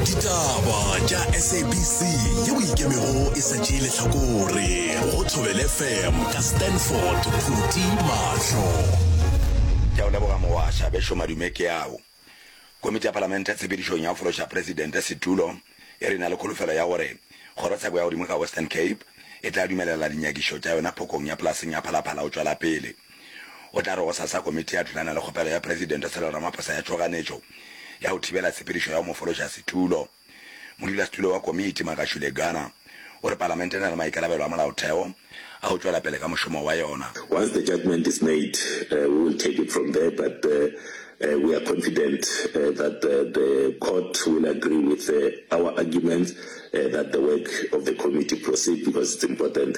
ditaba tša sabc ye o ikemego e sa tšee lehlakore go thobele fm ka stanford phuti mahlo ke a o leboga mogwasha bešo madume ke ao komiti ya palamente tshepedišong ya go fološa presidente setulo e re e na le kholofelo ya gore kgorotsheko ya godimo ka western cape e tla dumelela dinyakišo tša yona phokong ya polaseng ya phalaphala go tšwela pele O tla re gosasa komiti ya thulana le kgopelo ya Presidente Cyril Ramaphosa ya tšhoganetšo ya go thibela tshepedišo ya go mo fološa setulo. Modulasetulo wa komiti, Magashule Gana, o re palamente e na le maikarabelo a molaotheo a go tšwela pele ka mošomo wa yona. Once the judgement is made, we will take it from there but we are confident that the court will agree with our arguments that the work of the committee proceed because it's important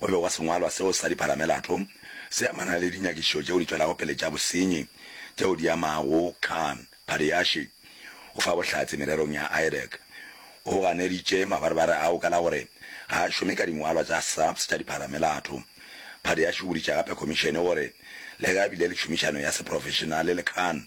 o be wa sengwalwa seo sa dipharamelato se amana le dinyakišišo tšeo di tšwelago pele tša bosenyi tšeo di amago Khan Pariashi. O fa bohlatse mererong ya IREC. O ganeditše mabarebare ao ka la gore ga a šome ka dingwalwa tša SAPS tša dipharamelato. Pariashi o boditše gape khomišene gore le ge a bile le tšhomišano ya seprofešenale le Khan,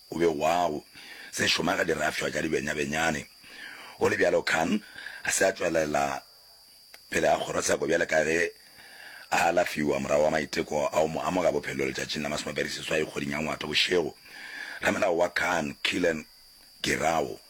O be wa go se šoma ge di rafšwa tša dibenyabenyane. Go le bjalo Khan a se a tšwelela pele ga kgorotsheko bjale ka ge a alafiwa morago ga maiteko a go mo amoga bophelo letšatšing la masomepedi seswai kgweding ya Ngwato bošego. Ramelao wa Khan, Killen Girao,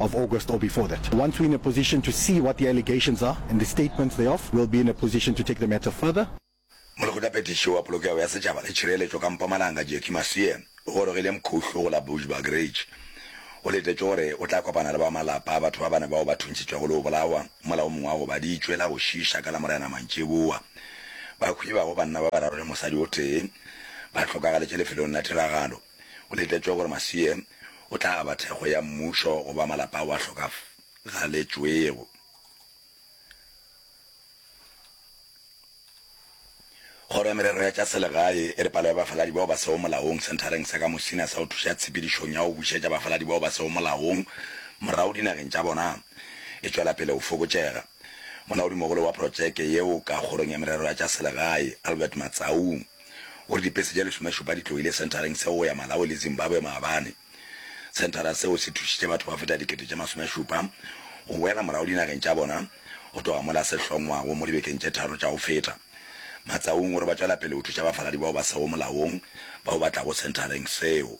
of August or before that. Once we're in a position to see what the allegations are and the statements thereof, we'll be in a position to take the matter further. Molekgotlaphethiši wa Polokego ya Setšhaba le Tšhireletšo ka Mpumalanga Jackie Masie o gorogile Mkhuhlu go la Bushbuck Ridge. O letetše gore o tla kopana le ba malapa a batho ba bane bao ba thuntšhitšwego le go bolawa mola o mongwe a gobaditšwe la go šiiša ka Lamorena mantšiboa. Bakhwi ba go banna ba bararo le mosadi o tee ba hlokagaletše lefelong la tiragalo. Go letletšwe gore Masiye o tla aba thekgo ya mmušo go ba malapa ao a hlokagaletšwego. Kgoro ya Merero ya tša Selegae e re palo ya bafaladi bao ba sego molaong senthareng sa ka Musina sa go thuša tshepedišong ya go bušetša bafaladi bao ba sego molaong morago dinageng tša bona e tšwela pele go fokotšega. Molaodimogolo wa protšeke yeo ka Kgorong ya Merero ya tša Selegae, Albert Matsaung, gore dipese tša lesomešupa di tloile senthareng seo go ya Malawi le Zimbabwe maabane. Senthara seo se thušitše batho ba feta dikete tše masomešupa go boela morago dinageng tša bona go tloga mola se hlongwago mo dibekeng tše tharo tša go feta. Matsaung o re ba tšwela pele go thuša bafaladi bao ba sego molaong bao ba tlago senthareng seo.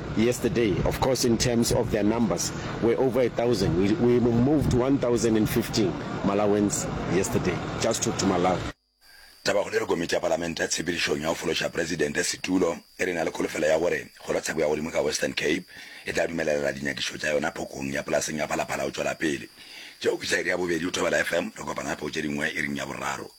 Yesterday, of course in terms of their numbers, we're over a thousand. We, we moved 1,015 Malawians yesterday, just to, to Malawi. Tabakgolo ya Komiti ya Palamente ya Tshepedišong ya go Fološa Presidente setulo e re e na le kholofelo ya gore kgorotsheko ya godimo ka Western Cape e tla dumelelela dinyakišo tša yona phokong ya polaseng ya Phalaphala go tšwela pele. Tšeo ke tša iri ya bobedi go Thobela FM, re kopana gape go tše dingwe iring ya boraro.